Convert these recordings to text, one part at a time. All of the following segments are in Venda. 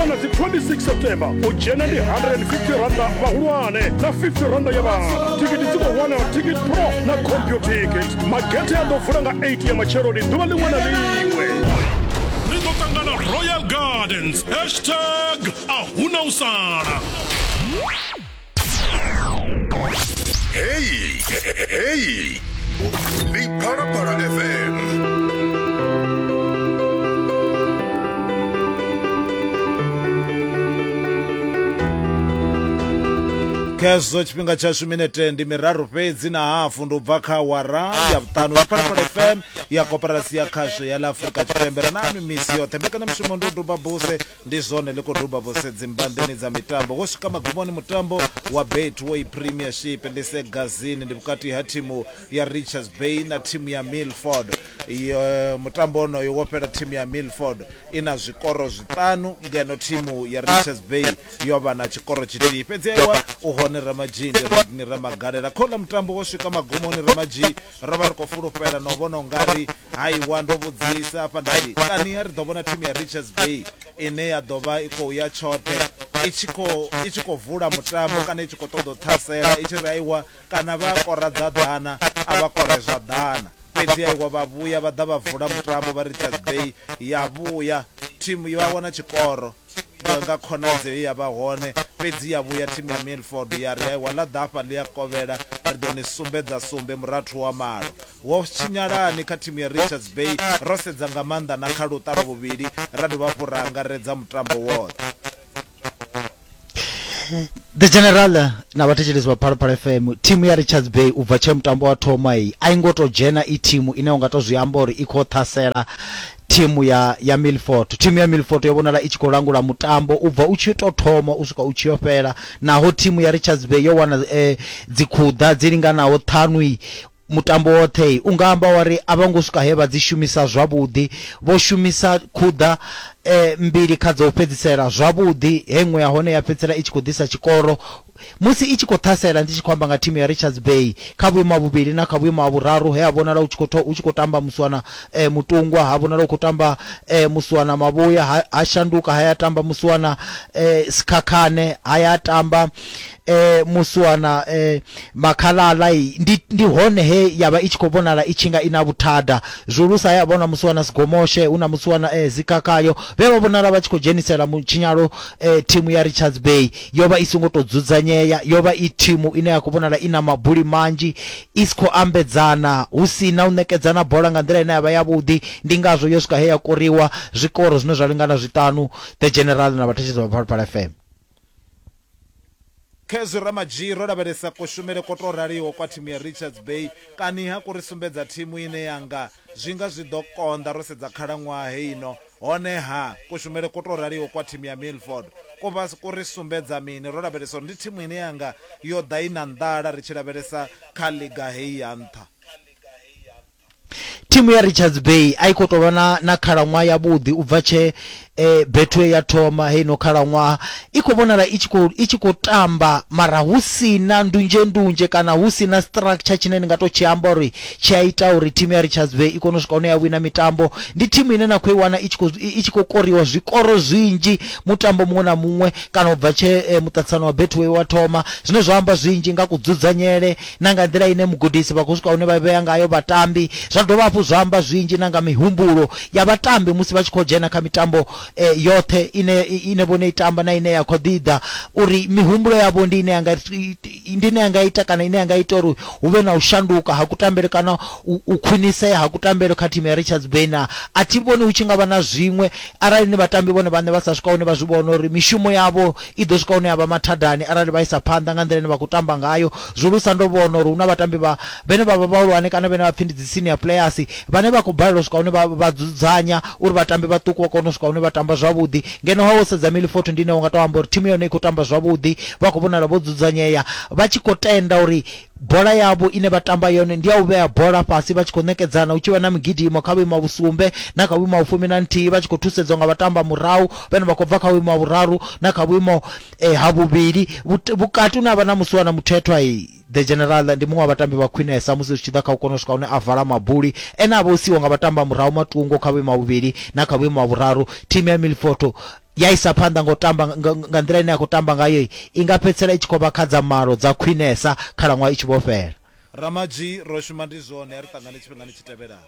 Ona dzi 26 September u dzhena ndi 150 randa vhahulwane na 50 randa ya vhana. Thikhithi dzi khou wanala Ticket Pro na CompuTicket. Magethe a ḓo vula nga 8 ya matsheloni ḓuvha ḽiṅwe na ḽiṅwe. Ri ḓo ṱangana Royal Gardens hashtag a huna u sala. Hey, hey, hey. Big Para Para FM. khezwo tshifhinga tshashu minete ndi miraru fhedzi na hafu ndi u bva kha wara ya vhuṱanu ya parapara fm ya koperasi ya khasho ya ḽa afurika tshipembe ra nanu misi yoṱhe mbekana mushumo ndi u duba buse Ndi zwone ḽi khou duba vho sedzi mbanḓeni dza mitambo. Wo swika magumoni mutambo wa Betway Premiership Lise Gazini ndi vhukati ha thimu ya Richards Bay na thimu ya Milford. Mutambo onoyo wo fhela thimu ya Milford i na zwikoro zwiṱanu ngeno thimu ya Richards Bay yo vha na tshikoro tshithihi fhedzi. Ewa u hone Ramadzhii, ndi Rodney Ramagalela. Kha uḽa mutambo wo swika magumoni Ramadzhii ro vha ri khou fulufhela na u vhona u nga ri Aiwa, ndo vhudzisa hafha nda ri, Kani ri ḓo vhona thimu ya Richards Bay ine ya ḓo vha i khou ya tshoṱhe i tshi khou i tshi khou vula mutambo kana i tshi khou ṱoḓa u ṱhasela i tshi ri aiwa kana vha a kora dza ḓana a vha kore zwa ḓana? Fhedzi aiwa vha vhuya vha ḓa vha vula mutambo vha Richards Bay ya vhuya thimu ya wana tshikoro nga khonadzeo ye ya vha hone, fhedzi ya vhuya thimu ya Milford ya ri, Aiwa, ḽa ḓa hafha ḽi a kovhela, ri ḓo ni sumbedza sumbe murathu wa malo. Ho tshinyalani kha thimu ya Richards Bay? Ro sedza nga maanḓa na kha luṱa lwa vhuvhili ra dovha hafhu ra angaredza mutambo woṱhe. The General na vhathetshelesi vha Phalaphala FM, thimu ya Richards Bay u bva tshee mutambo wa thoma iyi a i ngo tou dzhena i thimu ine u nga tou zwi amba uri i khou ṱhasela thimu ya ya Milford. Thimu ya Milford yo vhonala i tshi khou langula mutambo u bva u tshi tou thoma u swika u tshi yo fhela naho thimu ya Richards Bay yo wana eh, dzikhuḓa dzi linganaho ṱhanu Mutambo woṱhe, u nga amba wa ri a vho ngo swika he vha dzi shumisa zwavhuḓi. Vho shumisa khuḓa mbili kha dza u fhedzisela zwavhuḓi, he iṅwe ya hone ya fhedzisela i tshi khou ḓisa tshikoro musi i tshi khou ṱhasela, ndi tshi khou amba nga thimu ya Richards Bay, kha vhuimo ha vhuvhili na kha vhuimo ha vhuraru he ha vhonala hu tshi khou tamba Muswana Mutungwa, ha vhonala hu khou tamba Muswana Mavhuya, ha shanduka ha ya tamba Muswana Sikhakhane, ha ya tamba eh muswana eh makhalala i ndi ndi hone he yavha i tshi khou vhonala i tshi nga ina vhuthada zwulusa ya vhona muswana sigomoshe hu na muswana eh zikakayo vhe vha vhonala vha tshi khou dzhenisela mutshinyalo eh thimu ya Richards Bay yo vha i songo to dzudzanyea yo vha i thimu ine ya khou vhonala ina mabuli manzhi i si khou ambedzana hu si na u nekedzana bola nga nḓila ine yavha ya vhuḓi ndi ngazwo yo swika he ya koriwa zwikoro zwine zwa lingana zwiṱanu the general na vhathetshelesi vha Phalaphala FM Kha hezwi Ramadzhii ro lavhelesa kushumele kwo tou raliho kwa thimu ya Richards Bay, kaniha ku ri sumbedza thimu ine ya nga zwi nga zwi ḓo konḓa ro sedza khalaṅwaha heino. Honeha, kushumele kwo tou raliho kwa thimu ya Milford ku vha ku ri sumbedza mini? Ro lavhelesa uri ndi thimu ine ya nga yo ḓa i na nḓala ri tshi lavhelesa kha ḽiga heyi ya nṱha. thimu ya richards bay a i khou tou vha na, na khalaṅwaha yavhuḓi u bva tshee eh, betway ya thoma heino khalaṅwaha i khou vhonala i tshi khou- i tshi khou tamba mara hu si na ndunzhendunzhe kana hu si na structure tshine ni nga tou tshi amba uri tshi a ita uri thimu ya richards bay i kone u swika hune ya wina mitambo ndi thimu ine na khou i wana i tshi khou- i i tshi khou koriwa zwikoro zwinzhi mutambo muṅwe na muṅwe kana u bva tshee eh, muṱaṱisano wa betway wa thoma zwine zwa amba zwinzhi nga kudzudzanyele na nga nḓila ine mugudisi vha khou swika hune vha vhea ngayo vhatambi, zwa dovha hafhu zwa amba zwinzhi na nga mihumbulo ya vhatambi musi vha tshi khou dzhena kha mitambo yoṱhe ine ine vhone i tamba na ine ya khou ḓi ḓa uri mihumbulo yavho ndi ine ya nga ndi ine ya nga ita kana ine ya nga ita uri hu vhe na u shanduka ha kutambele kana u khwinisea ha kutambele kha thimu ya Richards Bay na a thi vhoni hu tshi nga vha na zwiṅwe arali ni vhatambi vhone vhaṋe vha sa swika hune vha zwi vhona uri mishumo yavho I ḓo swika hune ya vha mathadani arali vha isa phanḓa nga nḓila ine vha khou tamba ngayo. Zwihulusa ndo vhona uri hu na vhatambi vha vhane vha vha vhahulwane kana vhane vha pfi ndi dzi senior players vhane vha khou balelwa u swika hune vha vha dzudzanya uri vhatambi vhaṱuku vha kone u swika hune vha tamba zwavhuḓi. Ngeno ha wo sedza Milifort ndi ine wa nga tou amba uri thimu ya hone i khou tamba zwavhuḓi, vha khou vhonala vho dzudzanyea vha tshi khou tenda uri Bola yavho ine vha tamba yone ndi ya u vhea bola fhasi vha tshi khou ṋekedzana hu tshi vha na migidimo kha vhuimo ha vhusumbe na kha vhuimo ha vhufumi na nthihi vha tshi khou thusedzwa nga vhatamba murahu vhane vha khou bva kha vhuimo ha vhuraru na kha vhuimo ha vhuvhili vhukati hune ha vha na musiwa na muthethwa. The General ndi muṅwe wa vhatambi vha khwinesa musi zwi tshi ḓa kha u kona u swika hune a vala mabuli ene a vha o siiwa nga vhatamba murahu matungo kha vhuimo ha vhuvhili na kha vhuimo ha vhuraru. Thimu ya Milford ya isa phanḓa ngo tamba nga nḓila ine ya khou tamba ngayo i nga fhedzisela i tshi khou vha kha dza malo dza khwinesa khalaṅwaha i tshi vho fhela ramadzhi ro shuma ndi zwone a ri ṱangane tshifhingani tshi tevhelaho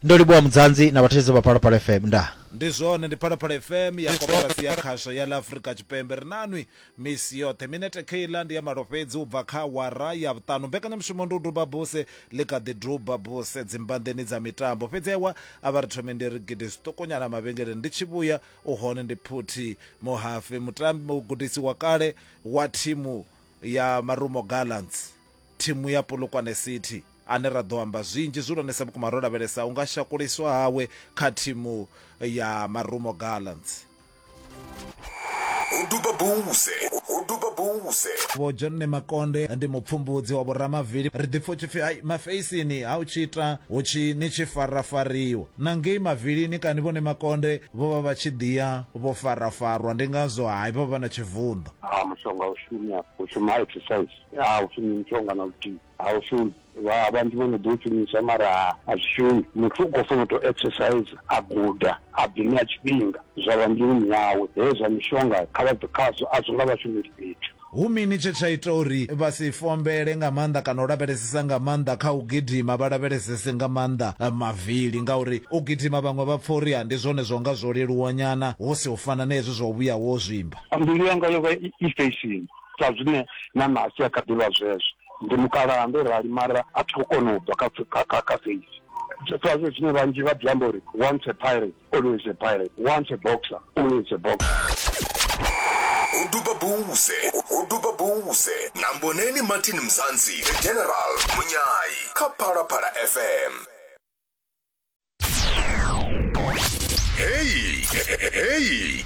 ndo livhuwa mudzanzi na vhathetshelesi vha phalaphala fm nda ndi zwone ndi phalaphala fm ya koporasi ya khasho ya ḽa afurika tshipembe ri nanwi Misi yoṱhe, minete kheiḽa ndi ya malo fhedzi u bva kha awara ya vhuṱanu. Mbekanyamushumo ndi u duba buse, ḽi kha ḓi duba buse dzimbanḓeni dza mitambo. Fhedzi ewa a vha ri thome ndi ri gidi zwiṱukunyana mavhengeleni, ndi tshi vhuya u hone ndi phuthi muhafe. Mutambi, mugudisi wa kale wa thimu ya Marumo Gallants, thimu ya Polokwane City, ane ra ḓo amba zwinzhi zwihulwanesa vhukuma ro lavhelesa u nga shakuliswa hawe kha thimu ya Marumo Gallants. vho john makonde ndi mupfumbudzi wa vhoramavili ri ḓipfa u tshi pfi ai mafeisini ha u tshi ita hu tshi ni tshi farafariwa na ngei mavilini kani vhone makonde vho vha vha tshi ḓiya vho farafarwa ndi ngazwo hai vha vha na tshivunḓo a mushonga u shumi afho u shuma exercise a u shumi mushonga na luthihi A u shumi vha vhanzhi vho no ḓi u shumisa mara ha a zwi shumi muthu u khou funa u to exercise a guda a ḓi ṋea tshifhinga zwa vha mbiluni yawe hezwi zwa mishonga kha vha bve khazwo a zwo nga vha shumeli fhethu. Hu mini tshe tsha ita uri vha si fombele nga maanḓa kana u lavhelesesa nga maanḓa kha u gidima vha lavhelesese nga maanḓa mavili ngauri u gidima vhaṅwe vha pfa uri ha ndi zwone zwa unga zwo leluwa nyana hu si u fana na hezwi zwa u vhuya wo zwimba. Mbilu yanga yo vha i fesheni. sa zwine na nasi a kha ḓi vha zwezwo ndi mukalaha ndo rali mara a thi khou kona u bva kha kha- kha kha feisi sa zwe zwine vhanzhi vha ḓi amba uri once a pirate always a pirate once a boxer always a boxer u duba buze u duba buze na mboneni martin mzansi the general munyayi kha phalaphala fm Hey, hey.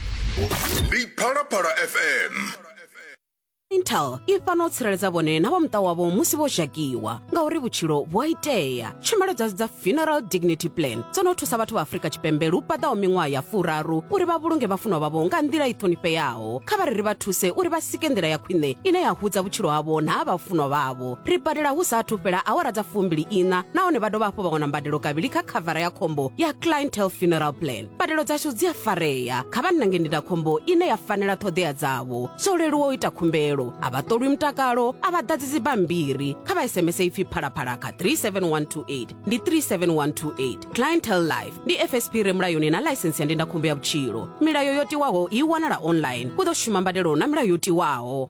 Ndi Phalaphala FM. intel i fana u tsireledza vhone na vha muṱa wavho musi vho zhakiwa ngauri vhutshilo vhu a itea tshumelo dzashu dza funeral dignity plan dzo no thusa vhathu vha afrika tshipembe lu paḓaho miṅwaha ya furaru uri vha vhulunge vhafunwa vhavho nga nḓila i ṱhonifheaho kha vha ri ri vha thuse uri vha sike nḓila ya khwine ine ya hudza vhutshilo havho na ha vhafunwa vhavho Ri badela hu sa athu fhela awara dza fumbili iṋa nahone vha dovha hafhu vha wana mbadelo kavhili kha khavara ya khombo ya clientele funeral plan mbadelo dzashu dzi a farea kha vha nnange ndindakhombo ine ya fanela ṱhoḓea dzavho zwo leluwa u ita khumbelo a vha ṱolwi mutakalo a vha ḓadzi dzibammbiri kha vha sms ipfi phalaphala kha 37128 ndi 37128 clientele life ndi fsp re mulayoni na ḽaisensi ya ndindakhombo ya vhutshilo milayo yo tiwaho i wanala online hu ḓo shuma mbadelo na milayo yo tiwaho